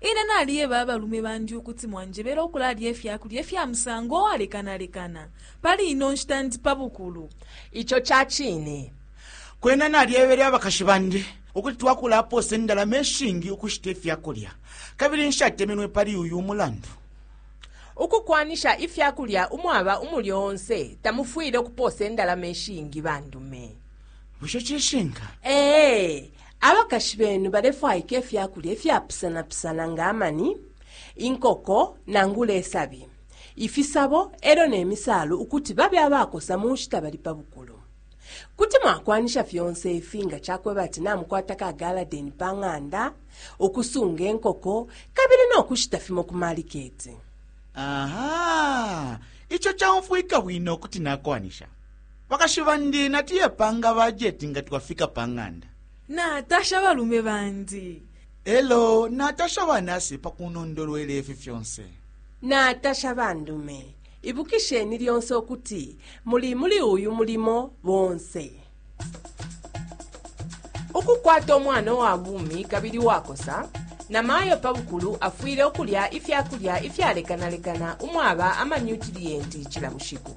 Ine naliyeba abalume bandi ukuti mwanjebele ukulalya ifya kulya ifya musango uwalekanalekana. Pali ino nshita ndi pa bukulu. Ico ca cine. Kwena nalyebele abakashi bandi ukuti twakulapoosa indalama ishingi ukushita ifya kulya, kabili nshatemenwe pali uyu mulandu. Ukukwanisha ifya kulya umwaba umulyo onse tamufwile ukupoosa indalama ishingi bandume. Bushe cishinka? Ee. Abakashi benu balefwaika ifya kulya ifyapusanapusana nga amani, inkoko nangula isabi, ifisabo e lyo ne misaalu ukuti babe abakosa mu nshita bali pa bukulu. Kuti mwakwanisha fyonse ifi nga ca kweba ati namukwata ka galadeni pa ng'anda, ukusunga inkoko, kabili no kushita fimo ku maliketi. Aha! Ico caumfwika bwino ukuti nakwanisha. Bakashi bandi natuye panga bajeti nga twafika pa ng'anda. Natasha abalume bandi. E lyo natasha ba nasi pa kunondolwela ifi fyonse. Natasha bandume. Ibukisheni lyonse ukuti muli muli uyu mulimo bonse. Ukukwata umwana uwa bumi kabili uwakosa, namayo pa bukulu afwile ukulya ifya kulya ifyalekanalekana umwaba amanyutiliyenti cila bushiku.